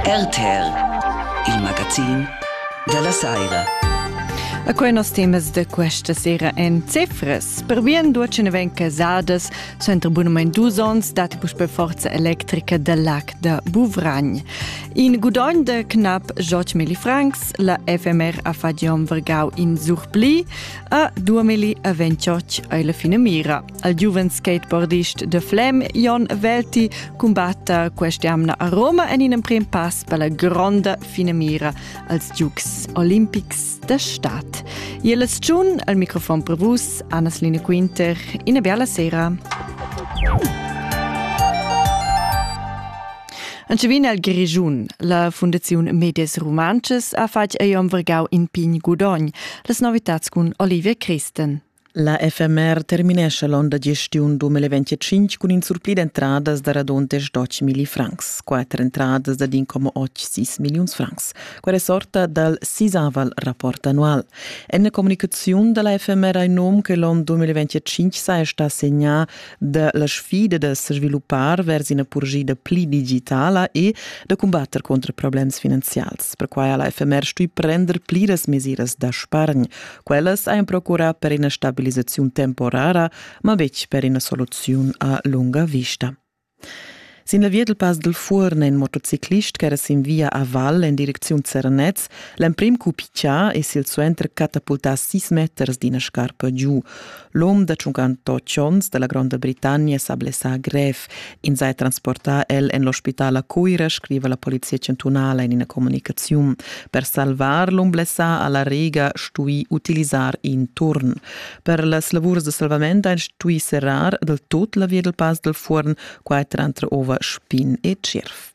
RTR, il magazin dalla saira. A quei nos temas da questa sera en cifras. Per bien duoce ne ven casadas, sentre abunament dus ons dati puspe forza electrica del lac da Buvragn. In gudogn de knap joc mili francs, la FMR a fadiom vergau in surpli, a due mili a ventioc ai la fine mira. al giuven skateboardist de Flem, Jon Velti, cumbatta quest'amna a Roma en in emprim pass per la gronda finemira als Dukes Olimpics de Stadt. E la stagiun al microfon per vus, Anna-Line Quinter, una bella sera. Ancevin al Grigiun, la Fundaziun Medias Romances ha fatg ei om vergau in pign gudogn, las novitats cun Olivia Christen. La FMR terminescha l'onn da gestiun 2025 cun in surpli d'entradas da raduntes d'8 milli francs, quatter entradas da 1,86 milliuns francs. Quella sorta dal sisaval rapport annual. En la comunicaziun da la FMR hai num che l'onn 2025 saja stà segnà da la sfida da sviluppar vers ina purgida pli digitala e da cumbatter contra problems finanzials. Perquai ha la FMR stuì prender pliras mesiras da spargn, Quellas ein procurà per ina stabilisaziun temporara, ma betg per ina soluziun a lunga vista. Sin la via del Pass del Fuorn è in motociclist che era sin via a Val en direcziun Zernez l'emprim cupicia e silsuenter catapultà sis meters d'ina scarpa giu. L'um da 58 onns da la Gronda Britannia s'ha blessà grev. Ins ha transportà el en l'ospital a Cuira, scriva la polizia chantunala in ina communicaziun. Per salvar l'um blessà ha la Rega stuì utilisar in turn. Per las lavurs da salvament ha stuì serrar del tut la via del Pass del Fuorn, quai tranter ova Spin e Tschirf.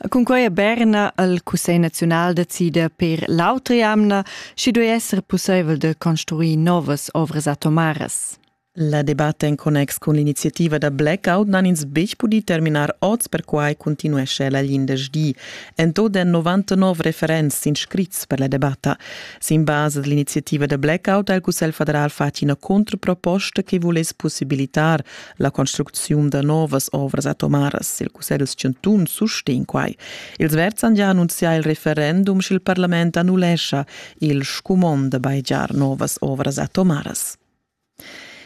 Cunquei ha Berna el Cussegl naziunal da decider per l'autra jamna, schi duei esser pusseivel da construir novas ovras atomaras. La debatta en connex cun l'iniziativa da blackout n'han ins betg pudì terminar oz, perquai continuescha la glindesdi. En tot èn 99 referents s'inscrits per la debatta. Sin basa dell'iniziativa da blackout ha il Cussegl federal fatg ina controproposta che vuless possibilitar La construcziun da novas ovras atomaras sil Cussegl chantun sustegn quai. Els Verds han gia annunzià il referendum sch'il parlament annullescha il scumond da baigiar novas ovras atomaras.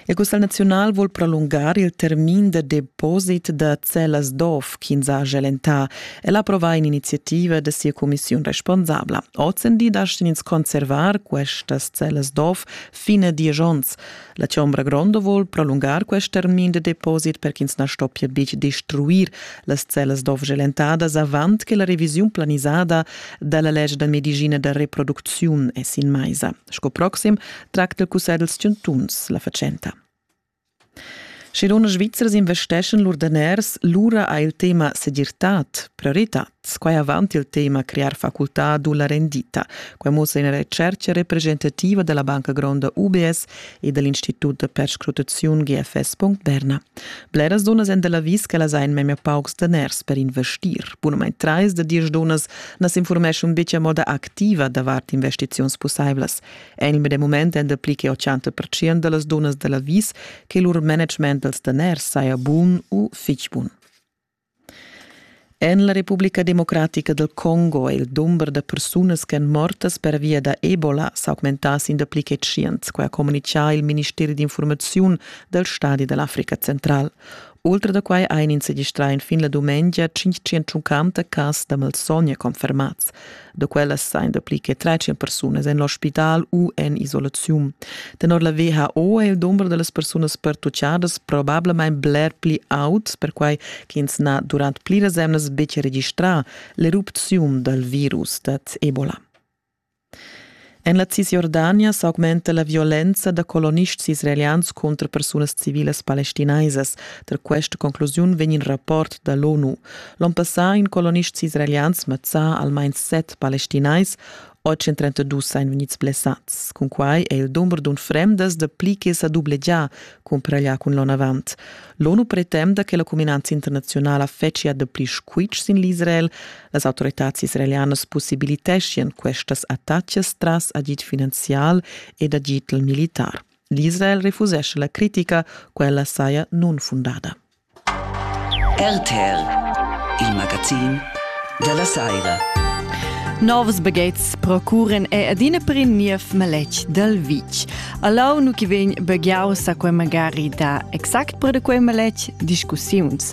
Il Cussegl naziunal vuol prolungar il termin da deposit da cellas d'ov ch'ins ha gelentà. El ha approvà in'iniziativa da sia cumissiun responsabla. Ozendi dastin ins conservar questas cellas d'ov fin a diesch onns. La chombra gronda vol prolungar quest termin de deposit per ch'ins na stoppia betg destruir las cellas d'ovgelentadas avant che la revisiun planisada dalla lege da medicina da reproducziun è sin maisa. Sco proxim tracta il cussegl dels chantuns la fatschenta. Sche luna Svizzers investeschan lur daners, lura ha il tema segirtad prioritad. Squai avant il tema crear facultad u la rendita. Quai mussa ina retschertga representativa da la banca gronda UBS e da l'Institut da perscrutaziun GFS.Berna. Bleras dunnas èn da l'avis ch'ellas hajan memia paucs daners per investir. Bunamain trais da diesch dunnas na s'informeschon betg a moda activa davart investiziuns pussaivlas. En il medem mument èn dapli che 80 percent da las dunnas da l'avis che lur management dals daners saja bun u fitg bun. En la Republica democratica dal Congo è il dumber da persunas ch'èn mortas pervia da Ebola s'augmentà sin dapli che tschient, quai ha communitgà il ministeri d'infurmaziun dal stadi da l'Africa Central. Ultra da quai han ins registrà enfin la dumengia 550 cas da malsogna confermads. da quellas sain dapli che 13 persunas en l'ospital u en isolaziun. Tenor la WHO è il dumber delle persunas pertucciadas probablamain bler pli aut, perquai ch'ins n'ha durant pliras emnas betg registrà l'erupziun dal virus dad Ebola. En la Cisjordania s'augmenta la violenza da colonists israelians contro persunas civilas palestinaisas. Tar questa conclusiun vegn il rapport da l'ONU. L'on passà in colonists israelians mazzà almain set palestinais 832 ein vegnids blessads. Cun quai è il dumber d'un fremdas da pli che sa dublegià cumpraglia cun l'on avant. L'ONU pretenda che la cuminanza internazionala fetschia da pli squitsch sin l'Israel, Las autoritads israelianas possibiliteschian questas attacas tras agid finanzial ed agid militar. L'Israel refusesce la critica, quella saja nunfundada. RTL, il magazin della Saira. Novs bagheits procuren è adina per in niev maletg dal vitg. Allau nu chi vegn baghiau sa quei magari da exact per da quei maletg discussiuns.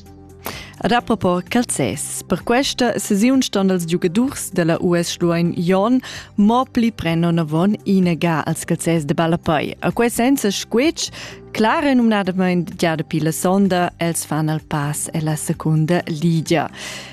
Rapport calzès. Per questa sesiun ston els giugadurs della US Schluein Jon mo pli prenno navon inega als calzès de Ballapei. A quei senza squetsch Clara numnadament già dapi la sonda, els fan al pass alla secunda ligia.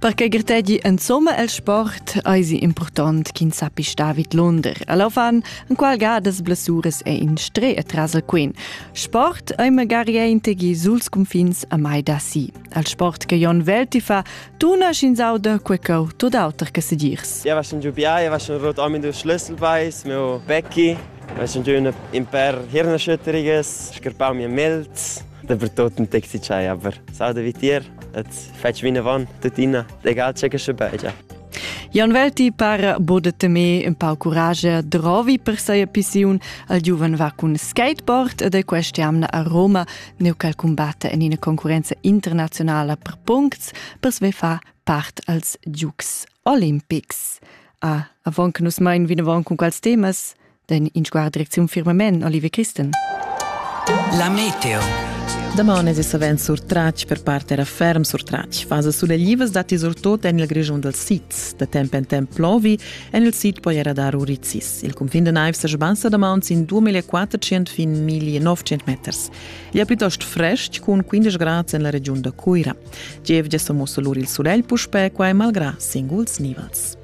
Per che grtegi insomma el sport eisi impurtont ch'in sappi star vid l'under. Alla fan en qual gadas blessuras è in stre atras el quin. Sport ei magari integi suls confins a mai da si. Al sport che Jon Velti fa, tuna schin sauda quei cau tot auter che sedirs. Io vaschen giu bia, io vaschen rot omi du schlüsselbeis, meu Becki, vaschen giu in per hirnerschütteriges, scarpau mir milz. Dapertot ein Taxi-Chai, aber sauda wie dir, et fetg vinavon tuttina, egal tge che sche begia. Jan Welti para bod de temer un pau courage drovi per seia pissiun al giuven va cun skateboard ed è questa amna a Roma neu cal combatta en ina concurenza internazionala per puncts per sve fa part als Dukes Olimpics. A, ah, avon che nus mein vinavon con quals temas, den in sguard direcziun firmament Olivier Christen. La meteo. Damane è savens surtratg per parte era ferm surtratg. Fase suleglivas dati surtot en il Grischun dal Sitz. Da temp en temp plovi, en il Sid poi era dar urizis. Il confin de naiv sa sbansa da mauns in 2400 fin 1900 meters. È piuttosto fresc con 15 gradi en la regiun da Cuira. Gievgia sommo solur il sulegl puspè qua e malgrà singuls nivels.